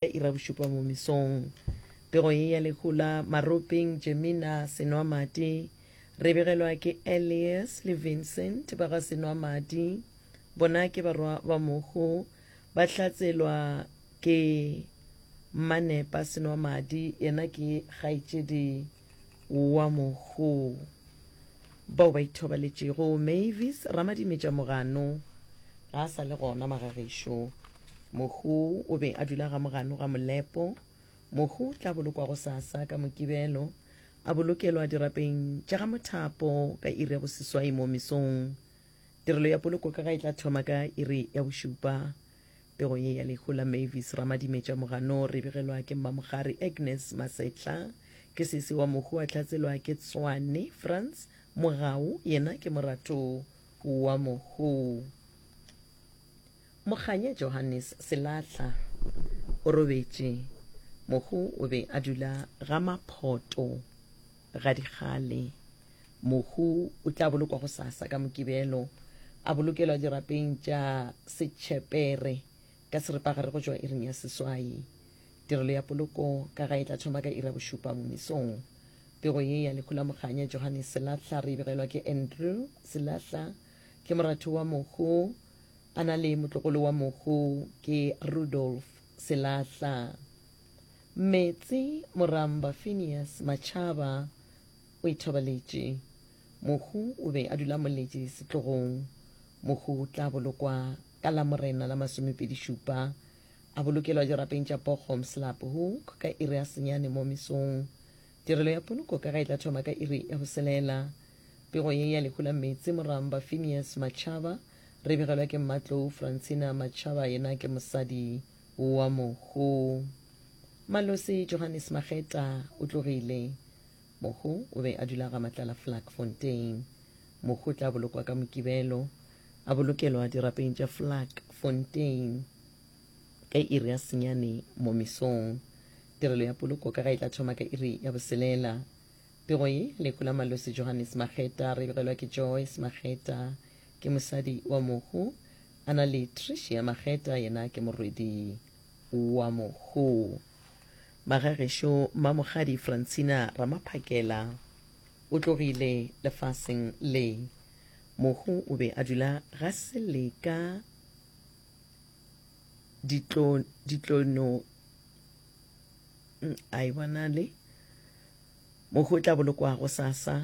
ya ira bošupa mo mesong. Pego ye ya lehu la Maropeng, Jemina Senwamadi, re begelwa ke Elias le Vincent ba ga Senwamadi. Bona ke barwa ba mohu, ba hlatselwa ke Mmanepa Senwamadi, yena ke kgaetšedi. wa mohu bao ba ithobaletšego mavis ramadimetša mogano ga a sa le gona magagešo mohu o be a dula ga mogano ga molepo mohu o tla bolokwago sasa ka mokibelo a bolokelwa dirapeng tša ga mothapo ka iri ya boseswai mo mesong tirelo ya poloko ka ga e tla thoma ka iri ya bošupa Pego ye ya lehu la Mavis Ramadimetša Moganoo re begelwa ke Mmamogari Agnes Masetla. Ke sesi wa mohu a hlatselwa ke Tswane Frans Mogau yena ke morato wa mohu. Mokganya Johannes Selahla o robetše. Mohu o be a dula ga Maphoto. Gadikgale, mohu o tla bolokwa gosasa ka Mokibelo, a bolokelwa dirapeng tša Setšhepere ka seripagare go tšwa iring ya seswai. Tirelo ya poloko ka gae e tla thoma ka iri ya bošupa momesong. Pego ye ya lehu la Mokganya Johannes Selahla re e begelwa ke Andrew Selahla. Ke moratho wa mohu, a na le motlogolo wa mohu ke Rudolf Selahla. Meetse, Moramba Phineas Matšhaba o ithobaletše. Mohu o be a dula moletše setlogong. Mohu o tla bolokwa ka Lamorena la masomepedi-šupa, a bolokelwa dirapeng tša Bochum Slaphoek ka iri ya senyane mo mesong. Tirelo ya poloko ka ga e tla thoma ka iri ya boselela. Pego ye ya lehu la Meetse, Moramba Phineas Matšhaba re begelwa ke mmatlou Francina Matšhaba yena ke mosadi. wa mohu. Malosi Johannes Mageta o tlogile. Mohu o be a dula ga Matlala Flakfontein. Mohu o tla bolokwa ka Mokibelo, a bolokelwa dirapeng tša Flakfontein ka iri ya senyane mo mesong. Tirelo ya poloko ka ga e tla thoma ka iri ya boselela. Pego ye, lehu la Malosi Johannes Mageta re begelwa ke Joyce Mageta. ke mosadi wa mohu, a na le Tricia Mageta yena ke morwedi wa mohu. Magagešo Mmamogadi Francina Ramaphakela o tlogile lefaseng le. Mohu o be a dula ga Seleka ditlo ditlono mm, a e bona le mohu o tla bolokwa go sasa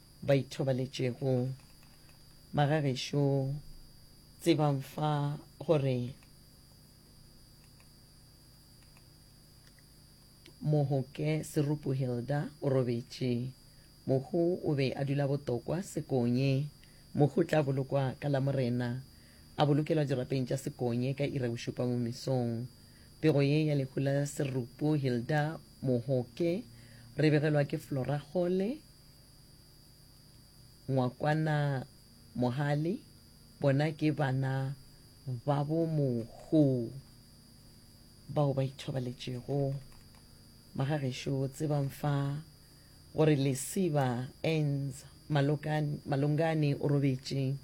ba ithobaletšego. Bagagešo, tsebang fa gore Mohoke Serupu Hilda o robetše. Mohu o be a dula botokwa Sekonye. Mohu tla bolokwa ka Lamorena, a bolokelwa dirapeng tša Sekonye ka ira bošupa mo mesong. Pego ye ya lehu la Serupu Hilda Mohoke re begelwa ke Flora Kgole, Ngwakwana Mohale, bona ke bana ba bo Mokgoo bao ba ithobaletšego. Magagešo tsebang fa gore Lesiba Ends Malongane o robetše.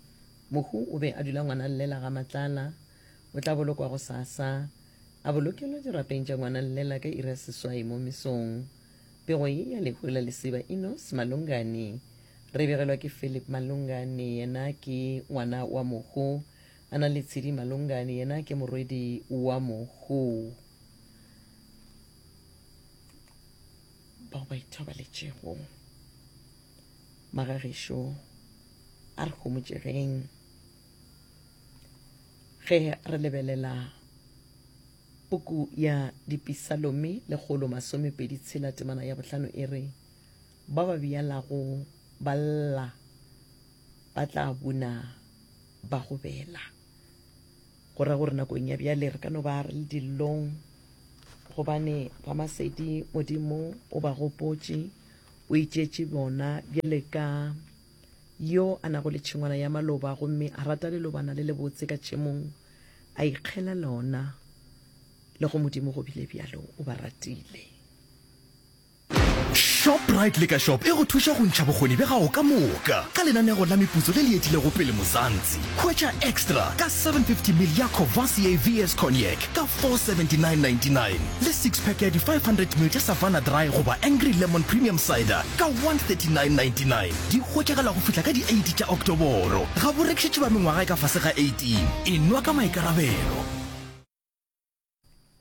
Mohu o be a dula ngwana llela ga Matlala. O tla bolokwa gosasa. A bolokelwa dirapeng tša ngwana llela ka iri ya seswai mo mesong. Pego ye ya lehu la lesiba Enos Malungani. Re begelwa ke Philip Malungani, yena ke ngwana wa mohu. A na le Tshidi Malungani, yena ke morwedi wa mohu. Bao ba ithobaletšego. Magagešo, a re homotšegeng ge re lebelela. Puku ya Dipisalome lekgolo masomepedi tshela temana ya bohlano e re, Ba ba bjalago ba lla, ba tla buna ba go bela. Go ra gore nakong ya bjale re ka no ba re le dillong gobane ba Masedi Modimo o ba gopotše, o itšetše bona bjale ka Yo a nago le tšhengwana ya maloba gomme a rata lelobana le lebotse ka tšemong, a ikgela lona, le go Modimo go bile bjalo, o ba ratile. Shoprite Liquor Shop e go thuša go ntšha bokgoni bja gago ka moka ka lenanego la meputso le le etilego pele Muzansi. Hwetša Extra ka 750ml ya Courvoisier VS Cognac ka 479.99 le six-pack ya di 500ml tša Savanna Dry goba Angry Lemon Premium Cider ka 139.99. Di hwetšagala go fihla ka di 8 tša Oktoboro. Ga bo rekišetšwe ba mengwaga e ka fase ga 18. E nwa ka maikarabelo.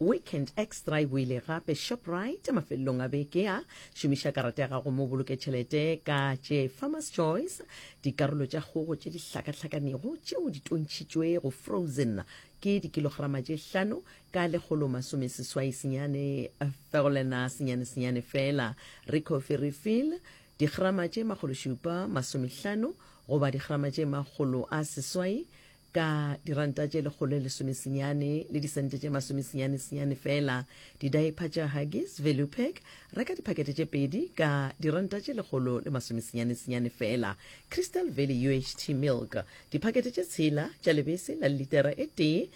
Weekend Extra e boile gape Shoprite mafelelong a beke a šomiša karata ya gago mo boloke tšhelete ka tše Farmers Choice dikarolo tša kgogo tše di hlakahlakanego tšeo di tontšhitšwe go frozen ke dikilograma tše hlano ka lekgolo masome seswai senyane eh, fegolela senyane senyane fela re coffee refill digrama tše makgolo šupa masomehlano goba digrama tše makgolo a seswai Ka diranta tše lekgolo lesomesenyane le disente tše masomesenyanesenyane fela, didaepha tša Huggies Velupec, reka diphakete tše pedi ka diranta tše lekgolo le masomesenyanesenyane fela. Crystal Valley UHT Milk, diphakete tše tshela tša lebese la litera e tee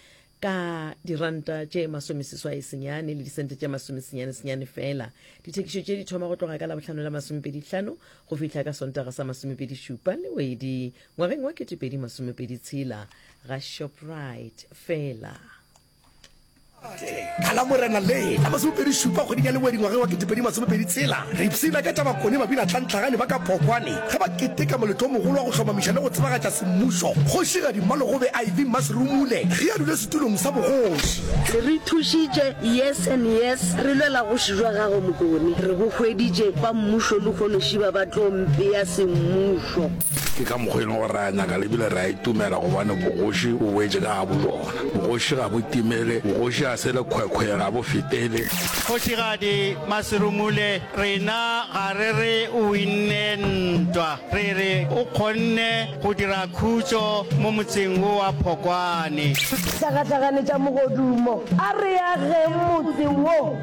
ka diranta tše masomeseswaesenyane le disente tše masomesenyanesenyane fela. Dithekišo tše di thoma go tloga ka Labohlano la masomepedi hlano go fihla ka Sontaga sa masomepedi šupa le wedi Ngwageng wa 2026 ga Shoprite fela. Ka la Morena le la masomepedi šupa kgweding ya lengwe dingwageng wa 2026 re ipshina ka tša bakone mabinatlantlagane ba ka Phokwane ge ba keteka moletlo o mogolo wa go hlomamiša le go tsebagatša semmušo Kgošigadi Mmalogobe iv Masirumule ge a dule setulong sa bogoši. Re ithušitše years and years re lwela goši jwa gagwe Mokone, re bo hweditše ba mmušo lehono šiba ba tlo mpea semmušo. Ke ka mokgwa e leng gore ra nyaka le bile ra itumela gobane bogoši bo boetše ka ga bojona. Bogoši ga bo timele, bogoši ga se le khwekhwe, ga bo fetele. Kgošigadi Maserumule, rena ga re re o winne ntwa, re re o kgonne go dira khutšo mo motseng wo wa Phokwane. Hlagahlaganetša mogodumo, a re ageng motse wo.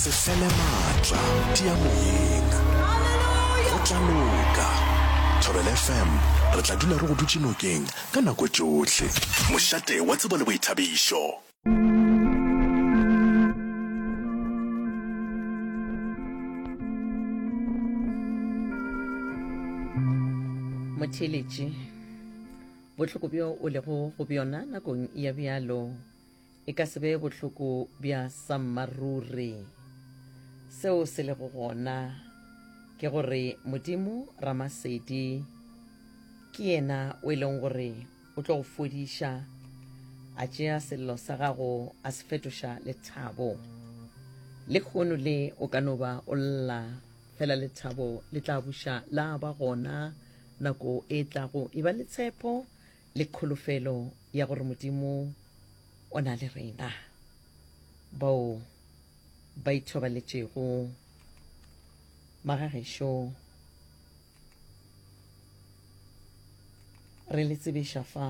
sefele maatla tia moyeng go tla loka thobel fm re tla dula re go dutse nokeng ka nako tšohle mošate wa tsebo le boithabišo motheeletši bohloko bjo o lego go bjona nakong ya bjalo E ka se be bohloko bja sammaruri. Seo se lego gona ke gore Modimo Ramasedi ke yena o e leng gore o tlo go fodiša, a tšea sello sa gago a se fetoša lethabo. Lehono le o ka no ba o lla fela lethabo le tla buša la ba gona nako e tlago. E ba le tshepo Le kholofelo ya gore Modimo o na le rena. Bao ba ithobaletšego magagešo re le tsebeša fa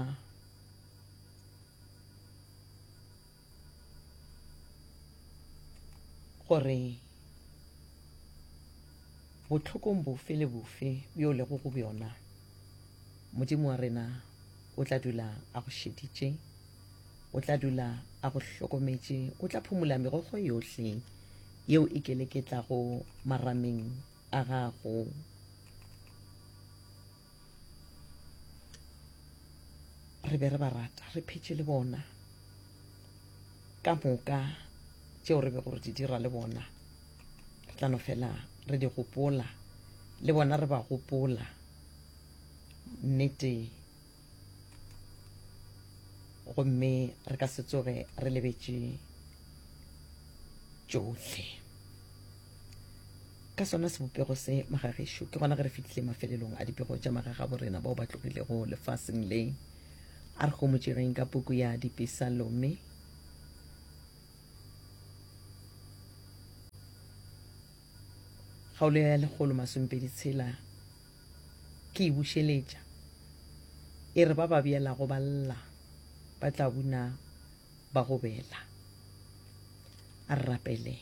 Gore bohlokong bofe le bofe bjo o lego go bjona, Modimo wa rena o tla dula a go šeditše, o tla dula a go hlokometše, o tla phumola megogo yohle yeo e keleketlago marameng a gago. re be re ba rata re phetše le bona ka moka tšeo re be gore di dira le bona re tla no fela re di gopola le bona re ba gopola nnete gomme re ka se tsoge re lebetše tšohle Ka sona sebopego se magagešo, ke gona ge re fihlile mafelelong a dipego tša magagaborena bao ba tlogilego lefaseng le. A re homotšegeng ka puku ya Dipesalome. Kgaolo ya lekgolo masomepedi tshela ke e bušeletša, e re, Ba ba beelago ba lla ba tla buna ba go bela. A re rapele.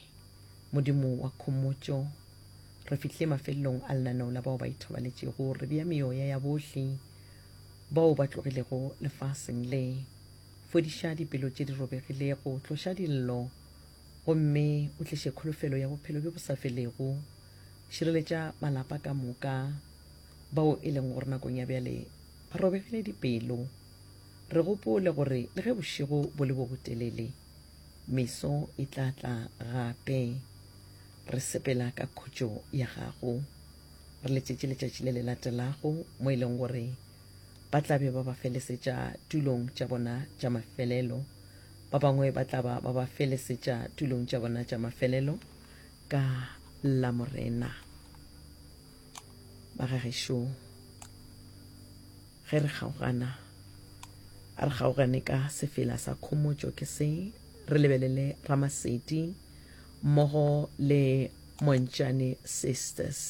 Modimo wa khomotšo, re fihlile mafelelong a lenaneo la bao ba ithobaletšego. Re bea meoya ya bohle bao ba tlogilego lefaseng le. Fodiša dipelo tše di robegilego, tloša dillo, gomme o tliše kholofelo ya bophelo bjo bo sa felego. Šireletša malapa ka moka, bao e leng gore nakong ya bjale ba robegile dipelo. Re gopole gore le ge bošego bo le bo botelele, meso e tla tla gape. Re sepela ka khutšo ya Gago. Re letšetše letšatši le le latelago mo e leng gore ba tla be ba ba felesetša tulong tša bona tša mafelelo, ba bangwe ba tla ba ba ba felesetša tulong tša bona tša mafelelo ka Lamorena. Ba ga gešo. Ge re kgaogana, a re kgaogane ka sefela sa khomotšo ke se, re lebelele Ramasedi mmogo le Montšane Sisters.